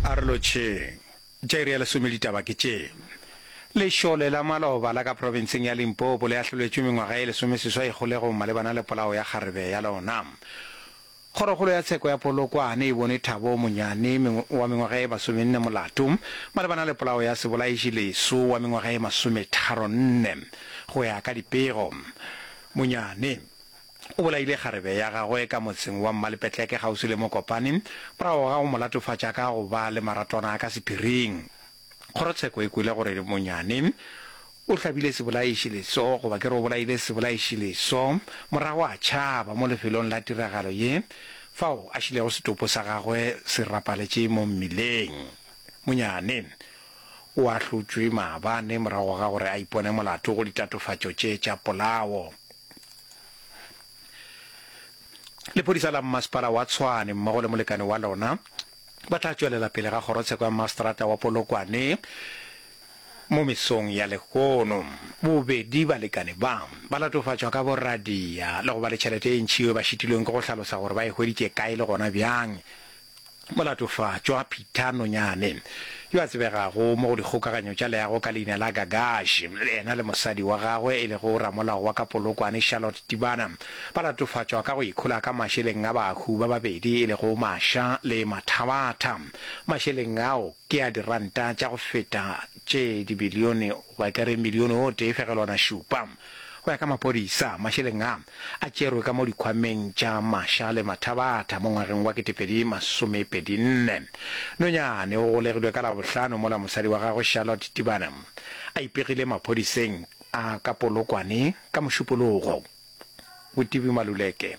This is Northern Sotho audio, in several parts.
A re lotšheng. Tša iri ya lesome ditaba ke tše. Lešole la maloba la ka profenseng ya Limpopo le ahlolwetšwe mengwaga e lesomeseswai kgolegong malebana le polao ya kgarebe ya lona. Kgorokgolo ya tsheko ya Polokwane e bone Thabo Monyane wa mengwaga e masomenne molato malebana le polao ya Sebolaiši Leso wa mengwaga e masometharonne. Go ya ka dipego, Monyane O bolaile kgarebe ya gagwe ka motseng wa Mmalepetleke kgauswi le Mokopane morago ga go mo latofatša ka go ba le maratwana ka sephiring. Kgorotsheko e kwele gore Monyane o hlabile sebolaišileso goba ke re o bolaile sebolaišileso morago a tšhaba mo lefelong la tiragalo ye fao a šilego setopo sa gagwe se rapaletše mo mmileng. Monyane o ahlotšwe maabane morago ga gore a ipone molato go ditatofatšo tše tša polao. Lephodisa la mmasepala wa Tshwane mmogo le molekane wa lona ba tla tšwelela pele ga kgorotsheko ya maseterata wa Polokwane mo mesong ya lehono. Bobedi balekane ba ba latofatšwa ka boradia le go ba le tšhelete e ntšhi yeo ba šitilweng ke go hlalosa gore ba e hweditše kae le gona bjang Molatofatšwa Peter Nonyane, yo a tsebegago mo go dikgokaganyo tša leago ka leina la Gagash, yena le mosadi wa gagwe e lego ramolao wa ka Polokwane Charlotte Tibana, ba latofatšwa ka go ikhola ka mašeleng a bahu ba babedi e lego Masha le Mathabatha. Mašeleng ao ke a diranta tša go feta tše dibilione, goba e ka re milione o tee fegelwana šupa. Go ya ka maphodisa, mašeleng a, a tšerwe ka mo dikhwameng tša Masha le Mathabatha mo ngwageng wa ketepedi masomepedi nne. Nonyane o golegilwe ka Labohlano mola mosadi wa gagwe Charlotte Tibane a ipegile maphodiseng a ka Polokwane ka Mošupologo. Botibi Maluleke.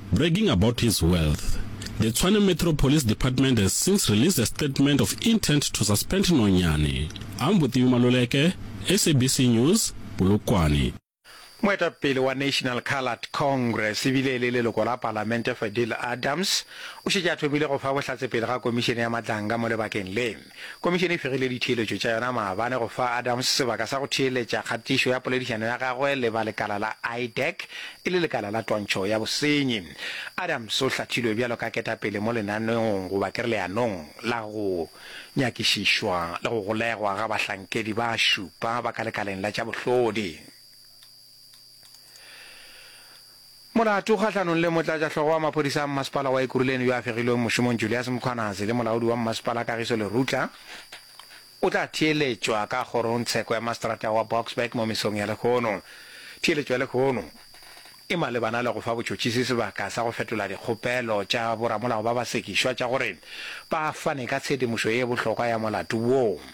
Bragging about his wealth, the Tshwane Metro Police Department has since released a statement of intent to suspend Nonyane. Ang Botibi Maluleke, SABC News, Polokwane. Moetapele wa National Coloured Congress e bile e le leloko la palamente Fadil Adams o šetše a thomile go fa bohlatse pele ga komišene ya matlanka mo lebakeng le. Komišene e fegile ditheeletšo tša yona maabane go fa Adams sebaka sa go theeletša kgatišo ya poledišano ya gagwe le ba lekala la IDEC e le lekala la twantšho ya bosenyi. Adams o hlathilwe bjalo ka ketapele mo lenaneong goba ke re leanong la go nyakišišwa le go golegwa ga bahlankedi ba šupa ba ka lekaleng la tša bohlodi. Molato kgahlanong le motlatšahlogo wa maphodisa a mmasepala wa Ekurhuleni yo a fegilweng mošomong Julias Mkhwanazi le molaodi wa mmasepala Kagiso Lerutla o tla theeletšwa ka kgorongtsheko ya maseterata wa Boksburg mo mesong ya lehono. Theeletšo ya lehono e malebana le go fa botšhotšhisi sebaka sa go fetola dikgopelo tša boramolao ba basekišwa tša gore ba fane ka tshedimošo ye bohlokwa ya molato woo.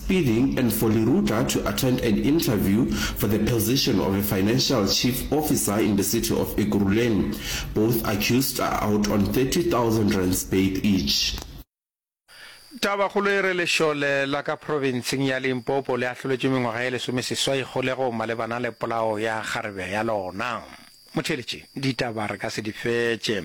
bidding and for Leruta to attend an interview for the position of a financial chief officer in the city of Ekurhuleni. Both accused are out on 30,000 rands bail each. Tabakgolo e re lešole la ka profenseng ya Limpopo le ahloletšwe mengwaga e lesomeseswai kgolegong malebana le polao ya kgarebe ya lona. Motheeletši, Ditaba re ka se di fetše.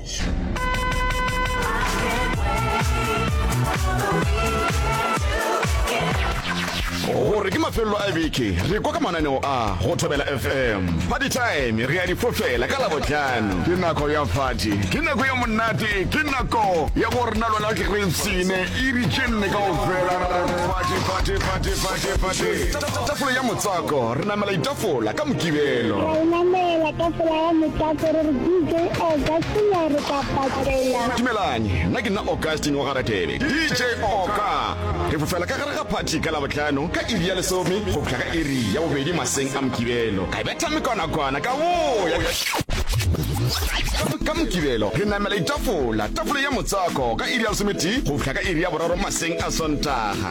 gore ke mafelelo a beke re kwa ka mananeo a go thobela fm party time re ya difofela ka labotlhano ke nako ya fati ke nako ya monate ke nako ya go rena lona kereitsene e ritšenne kao fela Tafole ya motswako, re namela ditafola ka Mokibelo. Ra e namela tafola ya motswako, re re DJ Augustine a re tla patela. Dumelang, nna ke nna Augustine wa ga Ratebe, DJ Oka. Re fofela ka gare ga phathi ka Labohlano ka iri ya lesome go fihla ka iri ya bobedi maseng a Mokibelo. Ka betha mekwanakwana ka boya. Ka Mokibelo re namela ditafola, tafole ya motswako ka iri ya lesometee go fihla ka iri ya boraro maseng a Sontaga.